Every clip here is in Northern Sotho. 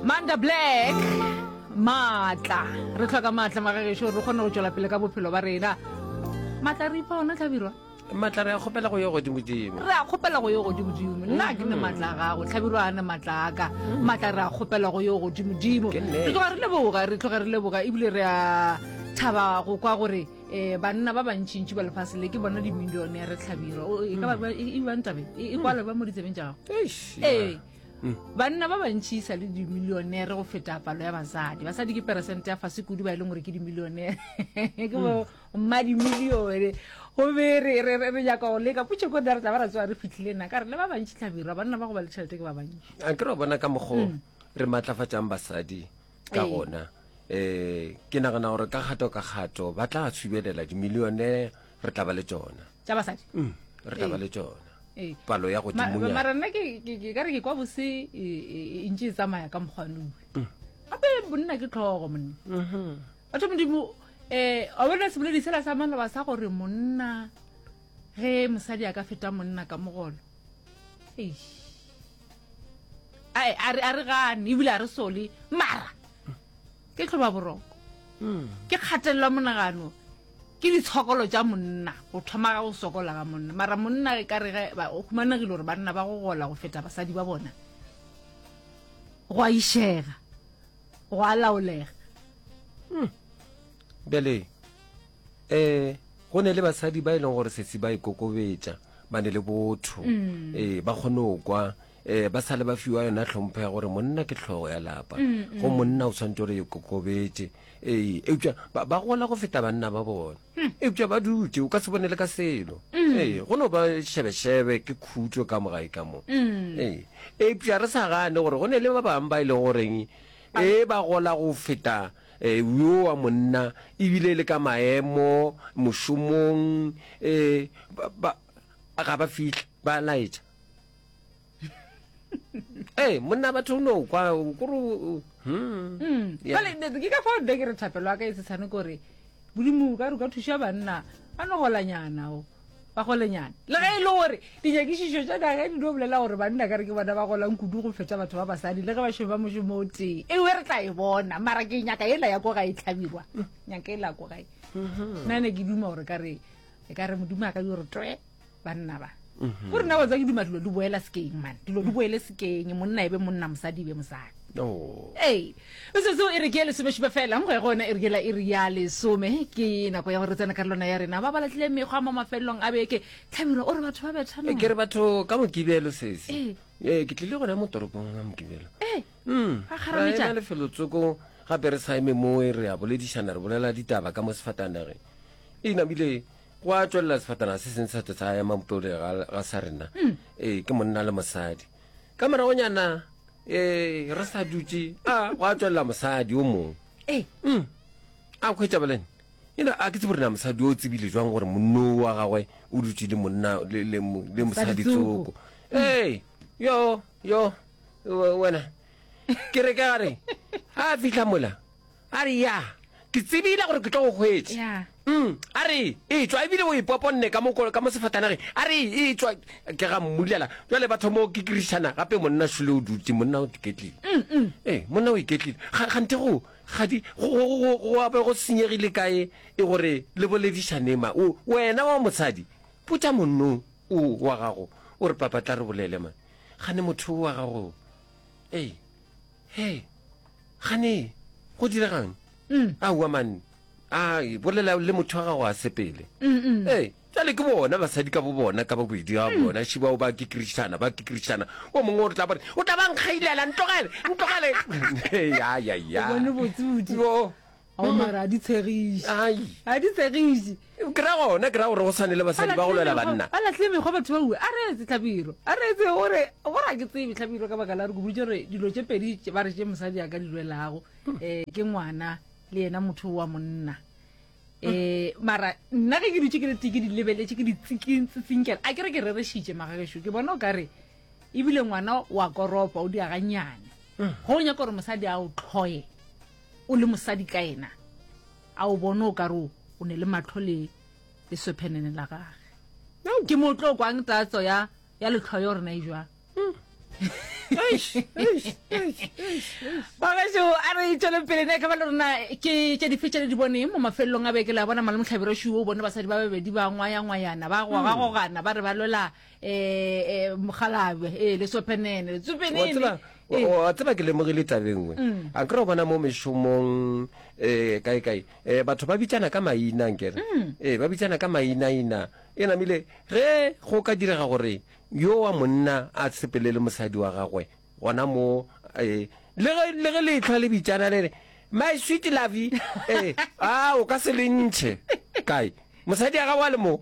Manda Black matla re tlhoka matla magagesho re kgone go tšwela pele ka bophelo ba rena matla re ipha ona tlhabirwa matla re a kgopela go yo godimodimo re a kgopela go yo godimodimo nna ke ne mm-hmm. matla a gago tlhabirwa a ne matla a ka mm-hmm. matla re a kgopela go yo godimodimo re tloga re leboga re tloga re leboga ebile re a thaba go kwa gore um banna ba bantšintši ba lefatshe le ke bona dimillione ya re tlhabirwa e ka ba mm. e, e, e, e ba ntabe e kwale ba mo ditsebeng tša gago ee banna ba bantši sa le dimilionere go feta palo ya basadi basadi ke peresente ya fase kudu ba e leng gore ke dimilionere ke bo hmm. mma dimilione gobe re nyaka go leka putso ko dare tla ba ra tsoa re fitlhile na ka re le ba bantši tlhabirwa banna ba go ba le tšhelete ke ba bantši a ke re bona ka mokgo hmm. re maatlafatsang basadi ka gona um ke nagana gore ka kgato ka kgato ba tla subelela dimilionere re tla ba le tsona tša basadi mm, re tla ba le tsona ee. palo ya godimonyana mara nna ke ka re ke kwa bose e, e, e ntse e tsamaya ka mokgwanoe mm. gape bonna ke tlhogo monna mm-hmm. batho modimo um a bone seboledi sela sa maloba sa gore monna ge mosadi a ka feta monna ka mogolo a re gane ebile a re sole mara ke tlhoba boroko ke kgatelelo ya monagano ke ditshokolo tša monna go thoma ga go sokola ga monna mara monna e ka re ge ba- o humanegile gore banna ba go gola go feta basadi ba bona go a išega go a laolega bjale um go ne le basadi ba e leng gore sesi ba ikokobetša ba ne le botho um ba kgone go kwa um ba sale ba fiwa yona tlhompho ya gore monna ke tlhogo ya lapa mm, go mm. monna o tshwanetse gore e kokobetse ee eupša ba gola go feta banna ba bona hmm. eupša ba dutse o ka se bone le ka selo mm. ee go no ba shebeshebe ke khutso ka mogae ka mo ee eupša re sa gane gore go ne le ba bangwe ba e leng goreng e ba gola go feta eh, yo wa monna ebile le ka maemo mošomong um ga ba fitlha ba laetša ee eh, monna batho o no kwa kore hmm. hmm. ke ka fa ode ke re thapelo a ka e setshane kore modimo ka re ka thuša banna a no golanyana o ba golenyana le ge e le gore dinyakišišo tša daga di no bolela gore banna ka re ke bona ba golang kudu go feta batho ba basadi le ge ba šomo ba mošomo o tee ewe re tla e bona mara ke nyaka ela ya ko ga e tlhabirwa nyaka ela ko gae mm-hmm. nna ne ke duma gore ka re e ka re modimo a ka di gore twe banna ba mhm. gore na watsa ke duma dilo di boela sekeng mane dilo di boele sekeng monna e be monna mosadi e be mosadi oh. ee metsotso e re ke ya lesomešupa fela nkgo ya gona e re kela e re ya lesome ke nako ya gore tsena ka lona ya rena ba ba latlile mekgwa mo mafelelong a beke tlhabiro o re batho ba bethana eh, ke re batho ka mokibelo sese ee eh. eh, ke tlile gona mo toropong ka mokibelo ee hmm. a kgarametša lefelotsoko gape re saeme mo e re a boledišana re bolela ditaba ka mo sefatanageng e namile gwa tswelela sefatana se seng sa tlo sa ema bopele ga ga sa rena ee ke monna le mosadi ka moragonyana ee re sa dutse a gwa tswelela mosadi o mongwe ee Mm. a kgwetsa bolene you know a ke tsebo rena mosadi o tsebile jwang gore monno wa gagwe o dutse le monna le- le mo- le mosadi tsoko ee yo yo we- wena ke re ka gare ga a fitlha mola a re ya ke tsebile gore ke tlo go hwetse yeah. mm, a re e tswa ebile o e poponne ka mo sefatanage a re e tswa ke ga mmulela jale batho mo ke kirišana gape monna sule o dutse monna o iketlile mm, mm. ee monna o iketlile gante go gadi go abe go senyegile kae e gore le boledišanema wena wa mosadi putsa monno o wa gago o re papa tla re bolele ma gane motho o wa gago ee he gane go diregang mm. aowa mane a bolela le motho wa gago a sepele mm, mm. ee jale ke bona basadi ka bo bona ka babedi ga bona shibao ba ke kristana ba ke kristana o mongwe o tla bone o tla ba nkgailela ntlogele ntlogele ao mara a di tshegiše Ai. a di tshegiše ke ra gona ke ra gore go tshwane le basadi ba go lwela banna ba latlhile mekgwa batho ba ue a re etse tlhabiro a re etse gore gore a ke tsebe tlhabiro ka baka la re koboditse gore dilo tše pedi tše ba re tše mosadi a ka di lwelago um ke ngwana le yena motho wa monna um mara nna ge ke dutse ke le tee ke di lebeletše ke di tsikintsetsinkela a ke re ke rerešitše magagešo ke bona o ka re ebile ngwana wa koropa o diaganyane go o nyaka gore mosadi a o tlhoye O le mosadi ka yena. A o bone o ka re o ne le mahlo le leswephenene la gage. Ke mo tlo kwang tatso ya ya letlhoyo gore na e jwang. Bagašo a re tšweleng pele ne ka ba le rona ke tše dife tše le di boneng mo mafelelong a beke la bona malemohlabiro šuo o bone basadi ba babedi ba ngwayangwayana ba gogagogana ba re ba lwela eh, eh, mogalabe eh, lesophenene tsophenene wa tseba ke lemogile tabengwe mm. a kry bona mo mešomong um kae kae um batho ba bitsana ka maina nkere mm. ee ba bitsana ka mainaina e namile ge go ka direga gore yo wa monna a sepelele mosadi wa gagwe gona mo um le ge letlhwa le bitsana le re my sweet lovey ee a o ka se le ntšhe kae mosadi ya gago a le moo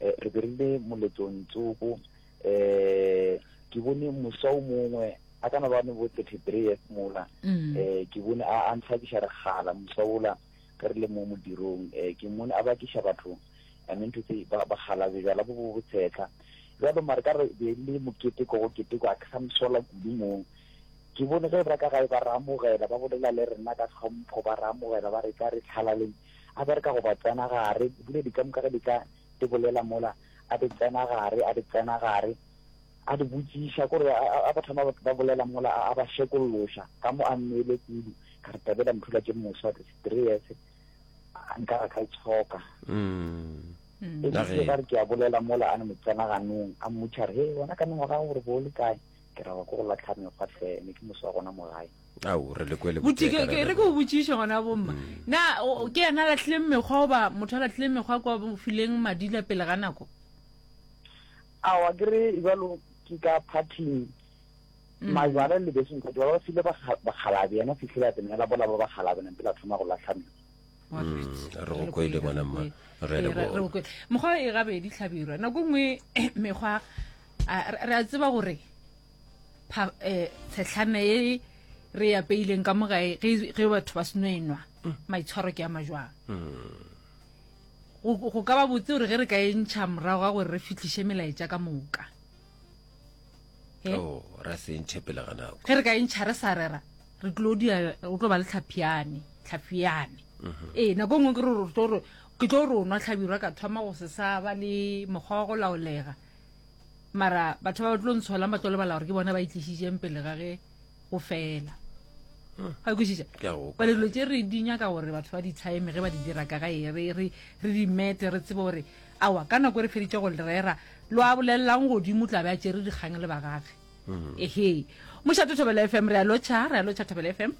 eh, re be re le moletlong tsoko eh ke bone mosa o mongwe a kana ba ne bo 33 years mola mm. eh ke bone a a ntsha ke share gala mosa ola ka re le mo modirong eh ke mone a ba ke shaba batho i mean to say ba ba gala be jala bo bo tshetla jalo mare ka re be le mokete go kete go a ka msola kudu mo ke bone ge ba ka ga ba ramogela ba bolela le rena ka tlhompho ba ramogela ba re ka re tlhalaleng A be re ka go ba tsena gare, dipula di ka moka ge di ka di bolela mola, a di tsena gare, a di tsena gare, a di botšiša. Ko re a ba thoma ba bolela mola, a ba šekolloša ka mo a nnoile kudu. Ka re, Tabela Mthula ke moswa, serious, a nka ra ka itshoka. E bile ka re ke a bolela mola, a no mo tsena ganong, a mmotšiša re, He, wena ka mengwaga ya gago o re bo o le kae? Ke ra, Wa ko go latlha mekgwa hle, ne ke moswa gona mo gae. ao re le kwele botse ke re ke o botsiše gona bomma mm. na ke yena latlhileng mekgwa oba motho a latlhileng mekgwa kwa fileng madila pele ga nako awa ke re jalo ke ka parting mm. majwala le beseng ka jwala ba file bakgalabe yena fitlhile a tsenela bola ba bakgalabe nang pele a thoma go latlha mekgwa mm, re go kwele bona mma re le go mekgwa e gabedi tlhabirwa nako nngwe mekgwa re a tseba gore pha eh tshetlhame e re ya peileng ka mogae ge ge batho ba seno enwa mm. maitshwaro ke a majwang mm. go ka ba botse gore ge re ka e ntšha morago ga gore re fitlhise melaetša ka moka eh? oh, ra se ntšhe pele ga nako ge re ka e ntšha re sa rera re tlo dia o tlo ba le tlhaphiane tlhaphiane mm-hmm. ee nako ngwe ke re ke tlo re o nwa tlhabirwa ka thoma go se sa ba le mokgwa wa go laolega mara batho ba ba tlo ntsholang ba tlo lebala gore ke bona ba itlišitseng pele ga ge go fela ga kwešiša bale dilo tse re di nyaka gore batho ba di time ge ba di dira ka ga e re di mete re tsebe gore awa ka nako e re feditse go lerera lo a bolelelang godimo tlabe a tsere dikgang le bagage mm-hmm. ehe mošato thobela f m re a lotšha re a lotšha thobela f m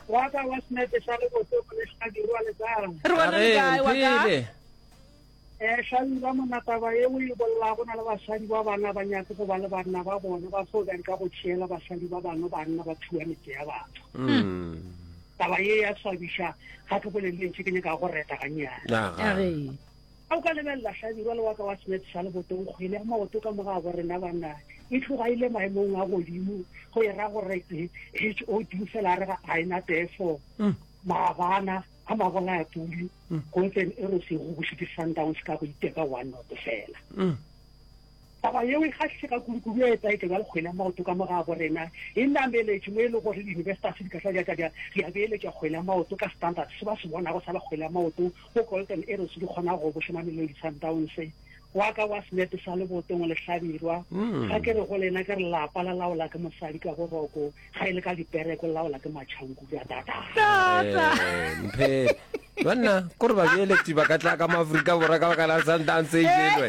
waka wa senepe sa le boto le sa dirwa le tsara re bona le kae waka Eh, Shali, ba monna taba ye o e bolla go na le basadi ba bana ba nyake go ba le banna ba bona ba fo bjang ka go tšeela basadi ba bangwe banna ba thuwa metse ya batho Mm. taba ye ya swabiša ga ke bolele lentši ke nyaka go reta ganyana Ya ga. Aree. a o ka lebelela hlabirwa le waka wa smith sa lebotong kgwele ya maoto ka moga bo rena banna e tloga e le maemong a godimo go e ra gore eh, h o d fela a re ga a ena tefo maabana a magona a tuli go ntse e re sego go šite sundowns ka go iteka one not fela taba yeo e kgahlise ka kulukulu e etsa eke bjale kgwele ya maoto ka moga bo rena e nameletše mo e le gore di-universitas di ka tla jaka ja di a beeletša kgwele ya maoto ka standard se ba se bonago sa ba kgwele ya maoto go golden arrows di kgona go bošomamelelo di-sundowns wa ka wa senepe sa lebotong le hlabirwa mm. ga ke re go lena ke re lapa la laola ke mosadi ka boroko ga e le ka dipereko le laola ke matšhanku ka tata eh, banna ko re babeeleti ba ka tla ka maaforika borwa ka baka la sundance ejelwe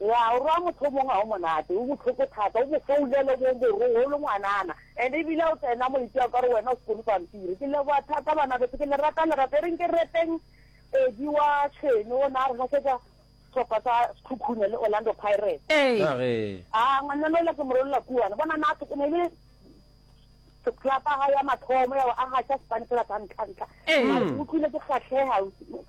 Ngwaa o roa motho o mongwe ga o monate, o bohloko thata, o mo founela o mo boroga o le ngwanana and ebile ga o tsena mo itšea o ka re wena o sekolo pampiri. Ke leboga thata banabeso, ke le rata lerato e reng ke reteng Eddie wa Tšhwene o ne a re gasetsa sehlopha sa Sekhukhune le Orlando Pirates. Ka ge. Aa ngwanana yola ke mo rolola kuana bona na se ne le club ya mathomo ya go aga tša Spanish la sa ntlha ntlha. Mara ke utlwile ke kgahlega.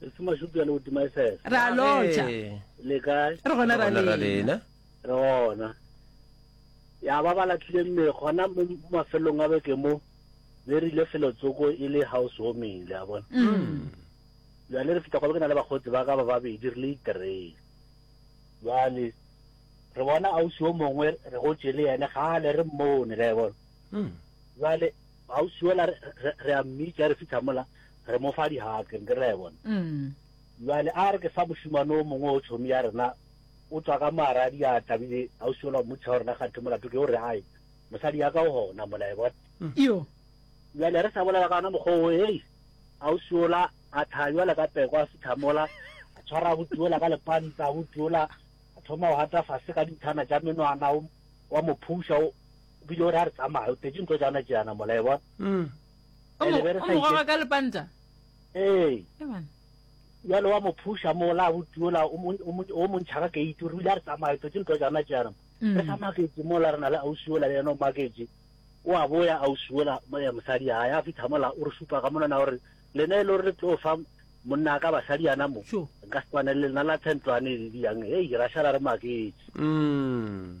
Re se mashupi a le godima e sese. Re a lotša. Le kae? Re gona ra lena. Re gona. Ya ba ba latlhile mme gona mo mafelong a beke mo be re ile felo tsoko e le house warming le a bona. Mm. Ya le re fita kwa ke na le bagotsi ba ka ba babedi re le iterei. Ya le re bona ausi o mongwe re go tšele yene ga le re mmone le a bona. Mm. Ya le Ausi yola re, re, re a mmitša re fihla mola, re mo fa dihag, re re a e bona. Bjale a re ke sa mošemane o mongwe o tšhomi ya rena o tšwa ka mo a ra diatla, bile ausi yola o mmotšiša gore na kganthe molato ke o re ae, mosadi ya ka o gona mola, e bona. Iyo. Bjale re sa bolela ka ona mokgwa wo, hei, ausi yola a thaya bjale ka peko, a fihla mola, a tshwara abuti yola ka lepanta, abuti yola a thoma go hata fase ka dinthana tša menwana, o, o a mo phuša, o, O bile o re a re tsamaya, o tletše ntho tšana tšeana mola, e bona. Mm. O mo, o mo goga ka lepanta? Ee. E bona. Bjalo wa mo phusha mola, a butiola, o mo ntšha ka keiti, o re o ile a re tsamaya, o tletše ntho tšana tšeana. Mm. Re sa maketše mola, re na le ausiola le yena o maketše. O a boya ausiola, eh, mosadi ya ya fitlha mola, o re šupa ka monana, o re, lena e le gore le tlo fa monna ka basadi yana mo nka se tshwanele lena la tshentlwane e le diyang hei ra šala re maketše mm.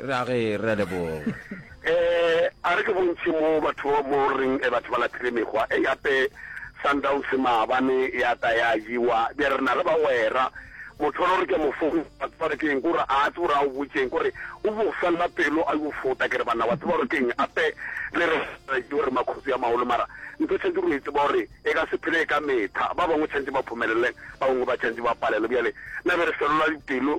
ra ge re leboga Eh, a re ke bontšhe mo batho ba mo reng eh, batho ba laphile mekgwa e yape Sundowns maabane ya ta ya jewa bja re na le bagwera motho lo re ke mo fong batho re keng gore a tse gore a o botšeng gore o bo fella pelo a yo fota ke re bana wa tseba gore keng ape le re re gore makhutsi ya maolo mara ntho tshwantse re itse ba gore e ka se phele e ka metha ba bangwe tshwantse ba phumelele ba bangwe ba tshwantse ba palelo bjale na be re felola dipelo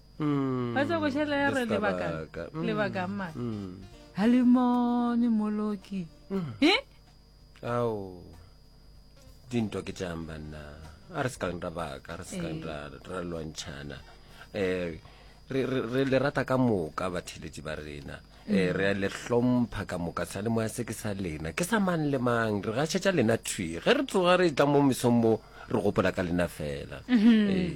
mm. ba tsa go šela ya re lebaka mm. ma ha le mone moloki e ao dintwa ke tšang banna a re se kang ra baka re se kang ra lwantšhana um re le rata ka moka batheletši ba rena um re a le hlompha ka moka sa le moya se ke sa lena ke sa mang le mang re gašetša lena thwi ge re tsoga re tla mo mesong mo re gopola ka lena fela mm-hmm. ee